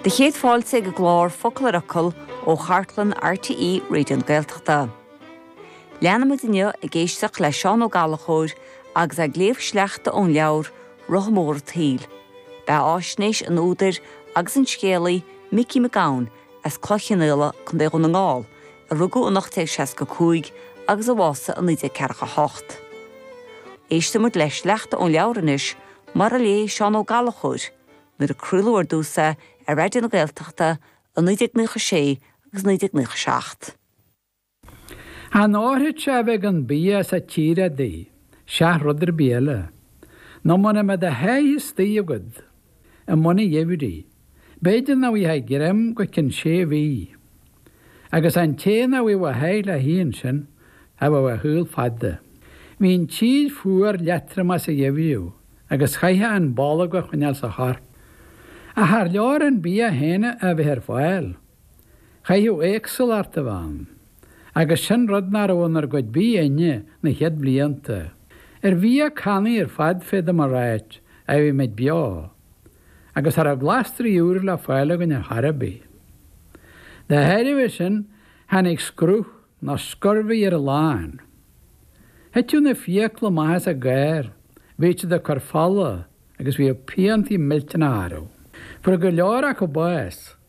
Bhur gcéad fáilte chuig an gclár Focal ar Fhocal ó chartlann RTÉ Raidió na Gaeltachta. Leanfaimid inniu ag éisteacht le Seán Ó Gallachóir agus é ag léamh sleachta ón leabhar Rotha Mór an tSaoil. Beathaisnéis an údair agus an scéalaí Mhicí Mac Gabhann as Cloich Cheann Fhaola, Co. Dhún na nGall, a rugadh in 1865 agus a bhásaigh in 1948. Éistfimid le sleachta ón leabhar anois Mar a léigh Seán Ó Gallachóir nuair a craoladh ar dtús é ar Raidió na Gaeltachta i 1996 agus 1997. Ní ar an airgead a bheidh an bia sa tír adaí, seach rud ar bith eile, nó muna mbeadh do sháith istigh agad i mbun an gheimhridh. b'fhéidir nach bhfaighfeá greim go cionn sé mhí, agus an té nach bhfaigheadh a sháith le hithe ansin, cha bheadh a shaol fada. Bhí an tír fuar leatromach sa gheimhreadh, agus chaithfeá an bholgam a choinneáil sa chorp. Ach char leor an bia féin a bheith ar fáil, chaithfeadh éagsúlacht a bheith ann, agus sin rud nach raibh inar gcuid bídh againne na chéad bhlianta. Ar bhia cannaí ar fad féadaim a ráit a bhí muid beo. agus cha raibh glasraí úra le fáil againn ar chor ar bith. Dá thairbhe sin, tháinig scurbhach nó scurvy ar a lán. Thiteadh na fiacla amach as a gcár, bhíodh siad ag cur fola agus bhíodh piantaí millteanacha orthu. Fuair go leor acu bás.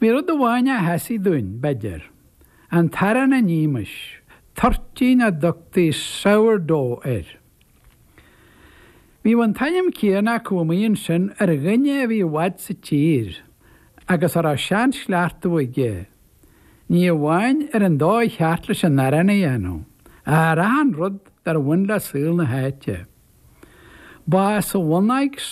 Bhí rud amháin a sheasaigh dúinn, b'fhéidir, an t-arán a nímis, toirtín a dtugtaí 'sour dough' air. Bhíodh an t-ainm céanna acu amuigh ansin ar dhuine a bhí i bhfad sa tír agus a raibh seanchleachtadh aige, ní amháin ar an dóigh cheart leis an arán a dhéanamh, ach ar achan rud dar bhain le saol na háite. Ba as a bhunáit